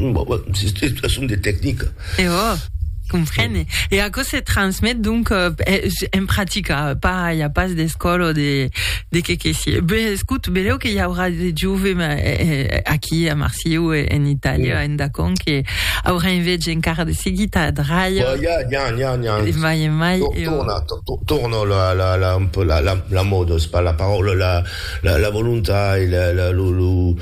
Bon, son de tecnica. E ò, comprene. E aquò se transmet, donc, en practica, pas, i a pas d'escòla o de, de qué que sié. Be, escout, beleu que i aurà de jove aquí a Marsieu e en Itàlia, en Dacon, que aurà un viatge encara de seguit a Adraia. Bon, ja, ja, ja, ja. E mai e mai, e ò. Torna, torna la, la, la, un peu la, la, la mòda, es pas la paraula, la, la, la volontat e la, la, lo, lo,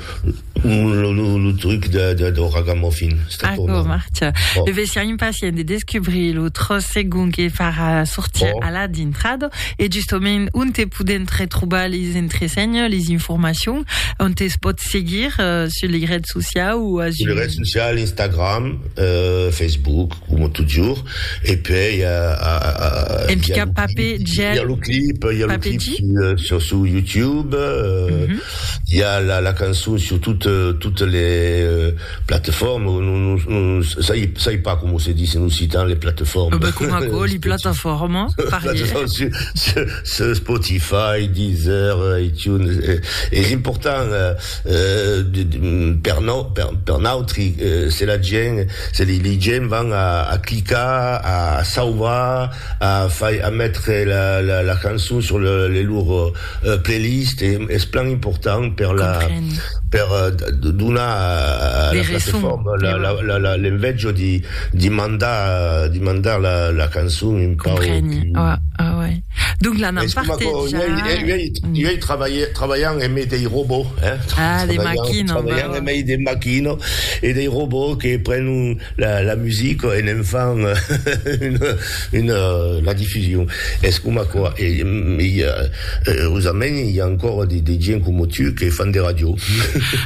Lo truc dau ragamuffin. Aquò marcha. Me vesia impacient de descubrir lo tròç segon que farà sortir a la dintrada e justament onte podèm retrubar les entresenhas, les informacions, onte es pòt seguir sus lei rets sociaus o asun. Sus lei rets sociaus, Instagram, Facebook, coma totjorn, e puèi i a lo clip, i a lo clip sur YouTube. I a la la cançon sur tot totes les plateformes o non non sai sai pas comment se disent en occitan les plateformes. Bah com aquò li plataformes parier. Sur Spotify, Deezer, iTunes es important per nos per nautri se la gent se li li gent van a a clicar a sauvar a fai a metre la la la cançon sur le le lor Playlist es plan important per la per donar a la platefòrma l'envejo de mandar de mandar la cançon un pauc es coma quò i ei trabalhant en mei dei robots eh trabalhant en mei de maquina e dei robots que prenon La musica en enfant la difusion es coma aquò e eusament i a ancora de gent coma tu que fan de ràdio.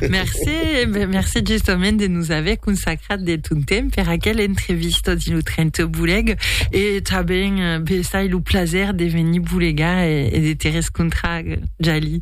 Merci, merci justament de nos aver consacrat de ton temps per aquela entrevista dins lo tren te bolega e tanben bessai lo plaser de venir bolegar e de te rescontrar Jalie.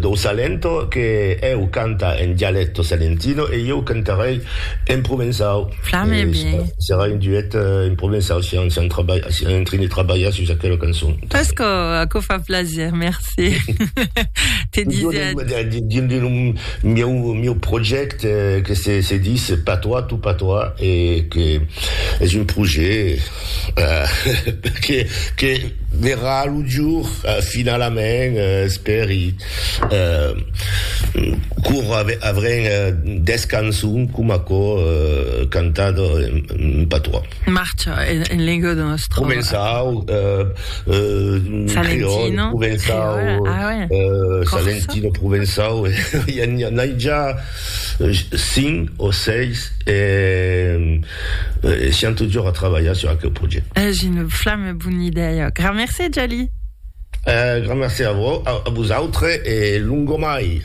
dau Salento que eu canta en dialecto salentino e ieu cantarei en provençau. Flame bien. Serà un duet en provençau si an, si an trabalha, si an en train de trabalhar sus aquela cançon. Pas que aquò fa plaser, merci. Te disais. Dins de lo mieu, mieu projècte que se, se dis Patois, tout patois, e que es un projet Perque que verrà lo jour finalament, espèri, quora avrem des cançons com aquò cantat en patois. Marcha en lenga de nòstra. Començau creòl, començau salentino, començau e n'ai ja cinc o seis e. E siam totjorn a trabalhar sur aqueu projèct. Es una flama bona idèia. Gran mercé, Jali. E gran mercé a vos, a vosautres e longomai.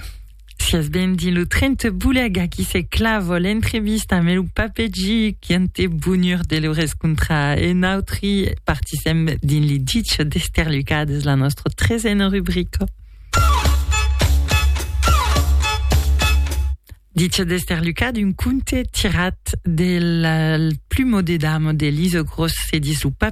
Siás benvit. Lo tren te bolega aquí se clava l'entrevista amb lo Pape Gi qui an te bonur de lo rescontrar e nautri partisèm dins li dich d'Esterlucades, la nòstra tresena rubrica. Dicha d'Esterlucat, un conte tirat del plumo de damo de Lise Gros, se dislopa